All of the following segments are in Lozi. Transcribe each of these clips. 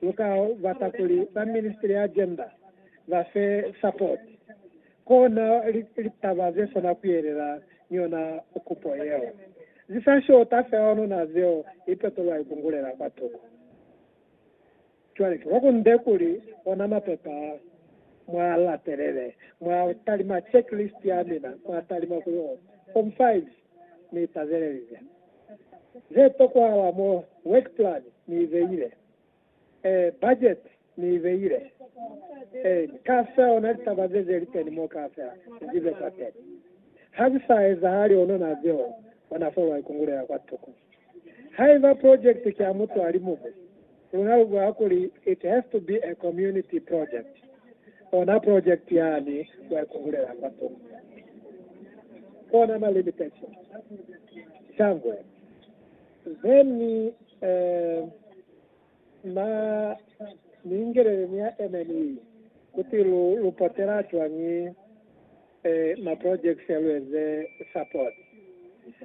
U ka bata kuli ba Ministry ya Gender ba fe support, kona litaba ze sona ku yelela ni yona kupo yeo. Zi sa shota fela onuna zeo i petolwa ikungulela kwa tuku. Cwale ki kwakunde kuli ona mapepa a, mwa latelele, mwa talima checklist ya mina, mwa talima kuli, oh, form 5. ni pazelize ze tokwahala mo work plan ni ibeile, ee, budget ni ibeile, ee, ka feo na litaba ze ze liteni mo ka fela ni zibe kwateni. Ha zi sa ezahali ono na zeo, ona fo lwa ikungulela kwa tuku. Haiba project ki ya mutu ali mumwi, Luna lu bula kuli, It has to be a community project. Ona project yani wa ikungulela kwa tunga. Kona ma limitations. Shangwe. Then, eh, ma ni ingelele ni ya MNE kuti lu, lu potela cwañi. ma projects ya lu eze support.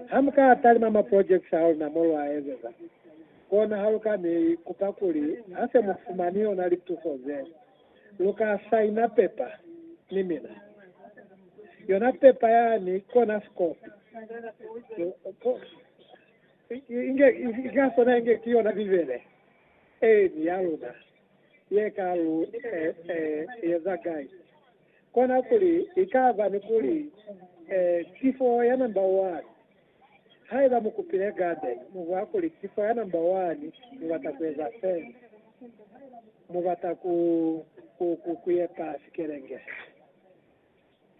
Ha mu ka talima ma projects a luna mo lwa ezeza, kona ha lu ka ni kupa kuli ha se mu fumani yona lituso ze, lu ka saina pepa ni mina. Yona pepa yani kona sikopi. Inge ka sona inge ki yona Bibele eni ya luna ye ka lu eza guide. Kona kuli ikaba ni kuli ki fo ya namba wani. Haiba mu kupile garden, mu bwa kuli ki fo ya namba wani, mu bata ku eza sena. Mu bata ku, ku, ku, ku yepa sikelenge se.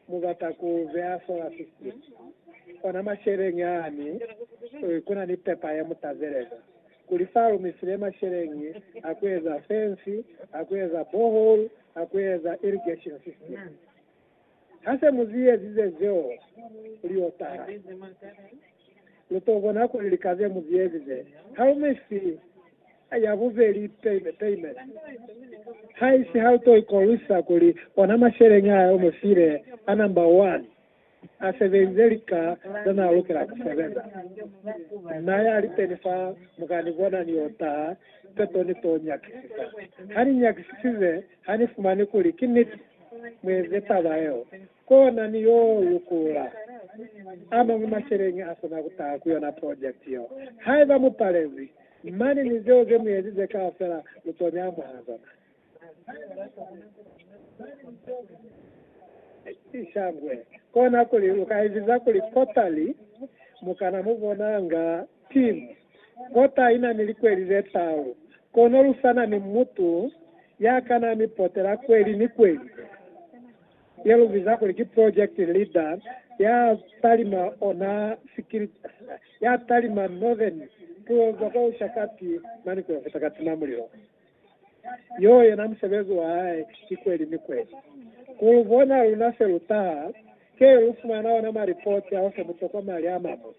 Mu bata ku beya solar system. Ona masheleñi ani, kuna ni pepa ye mu tazeleza. Kuli sa lumisile masheleñi a ku eza fence, a ku eza borehole, a ku eza irrigation system. Ha se mu zi ezize zeo, puli yo taha. Lu to bona kuli lika ze mu zi ezize ha lu mi fi ya bubeli payment. Haisi ha lu to ikolwisa kuli ona masheleñi a lu mi file a number one. a sebelize lika ze n'a lukela ku sebeza. N'a ya lipeni fa mukani bona ni y'o taha qeto ni t'o nyakisisa. Ha ni nyakisisize, ha ni fumani kuli ki niti, mu eze taba yeo, kona ni y'o lukula a mañwi masheleñi a sina ku taha ku yona project yeo. Haiba mu palezwi, mane ni zeo ze mu ezize kaufela lu t'o ni amuhela zona. Ishangwe. Kona kuli uka eziza kuli kota li mukana mu bonanga team. Kota ina ni likweli ze tau. Kono lu sana ni mutu ya kana mi potela kweli ni kweli. Ye lu biza kuli ki project leader ya talima ona sikiri ya talima northern. Tuo zoko ushakati mani kuya futa katima mulilo. Yo yena musebezi wa hae ki kweli ni kweli. Ku lu bona luna se lu taha, ke lu fumana ona malipoti ao fe mutokwa mali a mañwi.